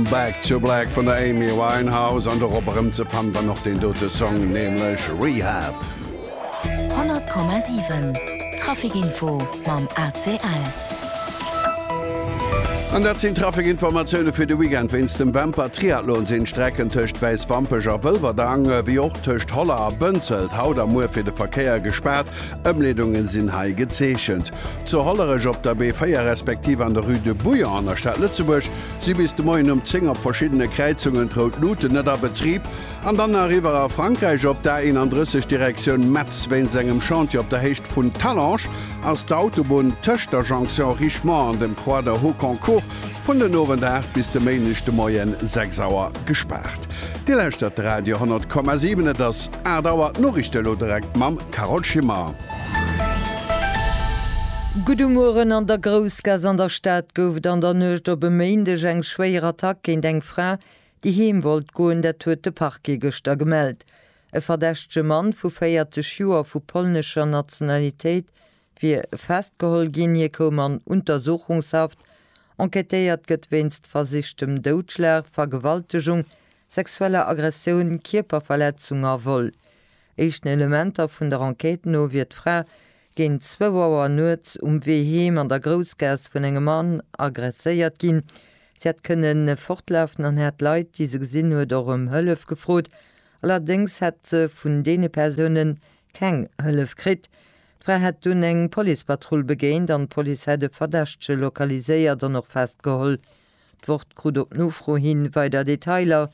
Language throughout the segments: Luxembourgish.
Back to Black vun der Amy Winehouse an dorop erëm ze fannen dann och deen dote Song, nämlech Rehab. 100,7 Trafic Info mam ACL. An dat sinn d'Trafic-Informatioune fir de Weekend. Wéinst dem Bemper Triathlon sinn d'Strecken tëscht Wäiswampech a Wëlwerdang, ewéi och tëscht Holler a Bënzelt haut a muer fir de Verkéier gespaart. Ëmleedungen sinn hei gezeechent. Zu Hollerech op der B4 respektiv an der Rue de Bouillon an der Stad Lëtzebuerg si bis de Moien um 10 op verschiddene Kräizungen d'Rout Luuten net a Betrib an dann nach iwwer a Frankräich op der A31 Direktioun Metz. Wéinst engem Chantier op der Héicht vun Talange ass d'Autobunn tëscht der Jonction Richemont an dem Croix de Hauconcourt vun den Owend 8 bis de Méindeg de Moien 6 Auer gespaart. Dir lauschtert de Radio 10,7, et ass 8 Auer. D'Noriichte elo direkt mam Carole Schimmer. Gudde Mueren, An der Groussgaass an der Stad gouf et an der Nuecht op e Méindeg eng schwéier Attack géint eng Fra, déi heem wollt goen. Dat huet de Parquet gëschter gemellt. E verdächtege Mann vu 40 Joer vu polnescher Nationalitéit wier festgeholl ginn. Hie koum an Untersuchungshaft. Enquêtéiert gëtt wéinst versichtem Doudschlag, Vergewaltegung, sexueller Aggressioun, Kierperverletzung a Vol. Éischten Elementer vun der Enquête no wier d'Fra géint zwou Auer nuets um Wee heem an der Groussgaass vun engem Mann aggresséiert ginn. Si hätt kënne fortlafen an hätt Leit, déi se gesinn huet, och ëm Hëllef gefrot. Allerdéngs hätt se vun deene Persounen Keng Hëllef kritt. D'Fra hätt dunn eng Policepatrull begéint an d'Police hätt e Verdächtege lokaliséiert an och festgeholl. D'Wort krut op Nofro hi weider Detailer,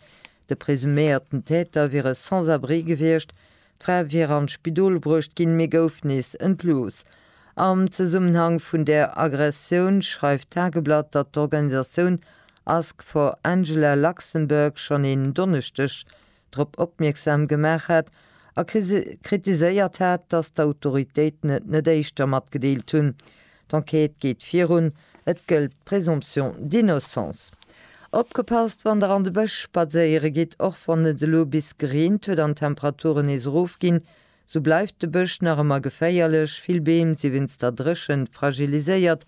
de presuméierten Täter wier e Sans-abri gewiescht, d'Fra wier an d'Spidol bruecht ginn, mee gouf nees entlooss. Am Zesummenhang vun där Aggressioun schreift d'Tageblatt, datt d'Organisatioun Ask for Angela Luxembourg schonn een Donneschdeg drop opmierksam gemaach hat a kritiséiert hat, datt d'Autoritéiten et net éischter matgedeelt hunn. D'Enquête geet virun, et gëllt d'Présomption d'innocence. Opgepasst wann der an de Bësch spadséiere gitt, och wann et elo bis gereent huet an d'Temperaturen nees erof ginn, sou bleift de Bësch nach ëmmer geféierlech, vill Beem si wéinst der Dréchent fragiliséiert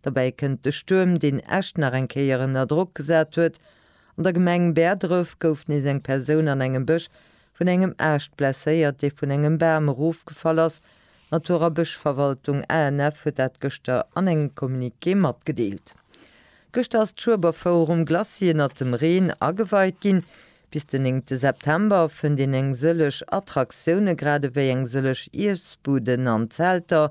Derbäi kënnt de Stuerm, deen Esch nach eng Kéier ënner Drock gesat huet. An der Gemeng Bäerdref gouf nees eng Persoun an engem Bësch vun engem Aascht blesséiert, dee vun engem Bam erofgefall ass. D'Natur a Bëschverwaltung, ANF, huet dat gëschter an engem Communiqué matgedeelt. Gëschter ass d'Schueberfouer um Glacis ënnert dem Reen ageweit ginn. Bis den néngte September fënnt een eng sëlleg Attraktioune, gradewéi eng sëlleg Iessbuden an Zelter.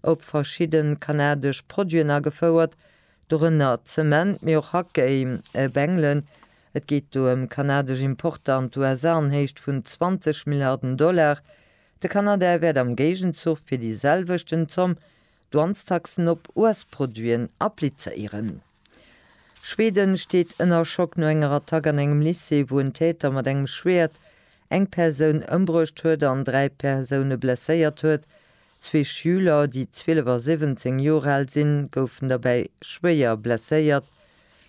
op verschidde kanadesch Produiten agefouert, dorënner Zement, mee och Hackkéi, Bengelen. Et geet do ëm kanadesch Importer an d'USA an Héicht vun 20 Milliarden Dollar. De Kanada wäert am Géigenzuch fir déi selwechten Zomm Douanestaxen op US-Produiten applizéieren. Schweden steet ënner Schock no enger Attack an engem Lycée, wou en Täter mat engem Schwäert eng Persoun ëmbruecht huet an dräi Persoune blesséiert huet. Zwee Schüler, déi 12 a 17 Joer al sinn, goufen derbäi schwéier blesséiert.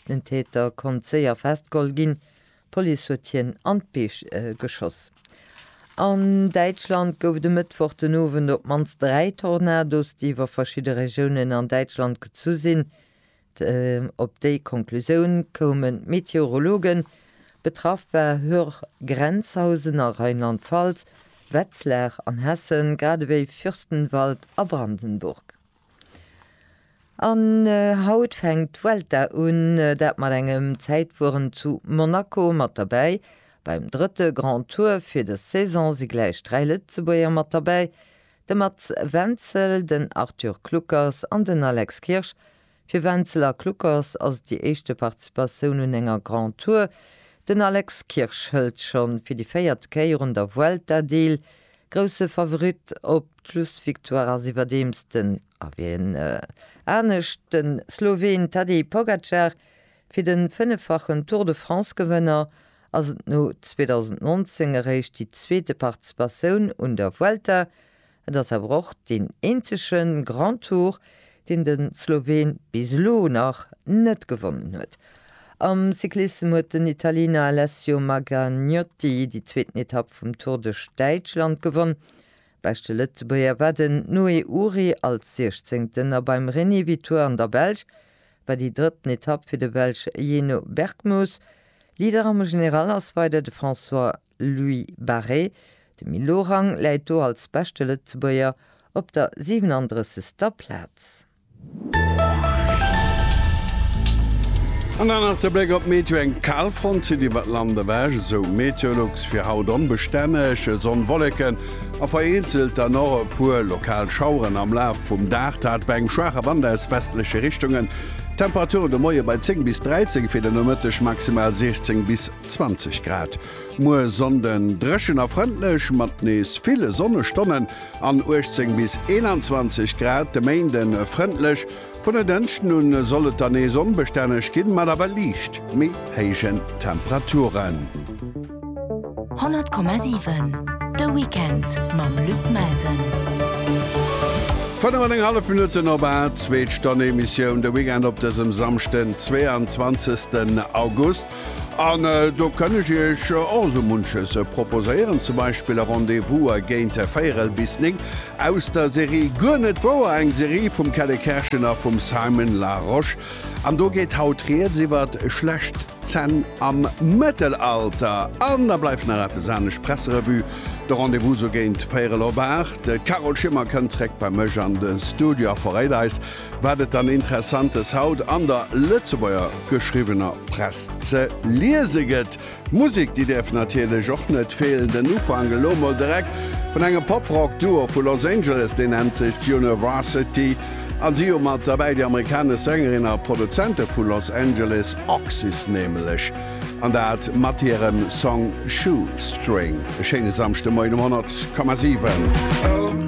Den Täter konnt séier festgeholl ginn, d'Police huet hien an d'Beech geschoss. An Däitschland gouf et e Mëttwoch den Owend op d'mannst dräi Tornados, déi iwwer verschidde Regiounen an Däitschland gezu sinn. Op déi Konklusioun koumen d'Meteorologen. Betraff war Höhr, Grenzhausen a Rheinland-Pfalz, Wetzlar an Hessen, grad ewéi Fürstenwald a Brandenburg. An haut fänkt d'Vuelta un, dat mat engem Zäitfueren zu Monaco. Mat derbäi beim drëtte Grand Tour fir dës Saison si gläich dräi Lëtzebuerger mat derbäi, De Mats Wenzel, den Arthur Kluckers an den Alex Kirsch. Fir Wenzel a Kluckers ass et déi éischte Participatioun un enger Grand Tour. Den Alex Kirsch hëlt schonn fir déi véiert Kéier un der Vuelta deel. Grousse Favorit op d'Schlussvictoire ass iwwerdeems den, a wien anescht, de Sloween Tadej Pogacar. Fir de fënneffachen Tour-de-France-Gewënner ass et no 2019 eréischt déi zweete Participatioun un der Vuelta. Et ass awer och deen eenzege Grand Tour, deen de Sloween bis elo nach net gewonnen huet. Am Cyclissem huet den Italiener Alessio Magragnotti déi zweeten Etapp vum Tour duerch Däitschland gewonn. Beschte Lëtzebuerger war den Noé Uhry als Siechzéngten a beim René Vitoire an der Belsch war déi drëtten Etapp fir de Belsch Yeno Berckmos Leader am General ass weider de François Louis Barré. De Milorang läit do als beschte Lëtzebuerger op der 37. Plaz. An dann nach de Bléck op d'Meteo, Eng Kalfront zitt iwwert Land ewech, esou Meteolux. Fir haut onbestänneg Sonn, Wolleken A vereenzelt dann och e puer lokal Schaueren am Laf vum Dag, dat bei engem schwaache Wand aus westleche Richtungen. D'Temperature de Moie bei 10 bis 13, fir de Nomëtteg maximal 16 bis 20 Grad. Muer Sonnden dréchen a frëndlech, mat nees ville Sonnestonnen an 18 bis 21 Grad. De Méinden frëndlech. Vun der Dënschden un soll et dann nees onbestänneg ginn, mat awer liicht méi héijen Temperaturen. 100,7 De Weekend mam Luc Melsen. 5,5 Minutten op 8, Zweet Stonn Emissioun, de Weekend op dësem Samschden, 22. August. An do kënn ech Iech och esou munches proposéieren, zum Beispill e Rendez-Vouser géint véierel bis néng aus der Serie Guer net wouer, eng Serie vum Kelle Kerschen a vum Simon Larosche. An do geet haut Rieds iwwer schlecht Zänn am Mëttelalter. An da bleift nach eppes anescht, d'Presserevue, de Rendez-Vouser géint véierel op aacht. D'Carole Schimmer kënnt zréck bei mech an de Studio a verréit eis, Wat et dann Interessantes haut an der Lëtzebuerger geschriwwener Press ze liese gëtt? D'Musek, déi däerf natierlech och net feelen. Den Ufank elo mol direkt vun engem Pop-Rock-Duo vu Los Angeles, deen nennt sech University a si hu mat derbäi déi amerikanesch Sängerin a Produzente vu Los Angeles, Oxys nämlech, an dat mat hirem Song Shoestring. E schéine Samschdemoien um 100,7.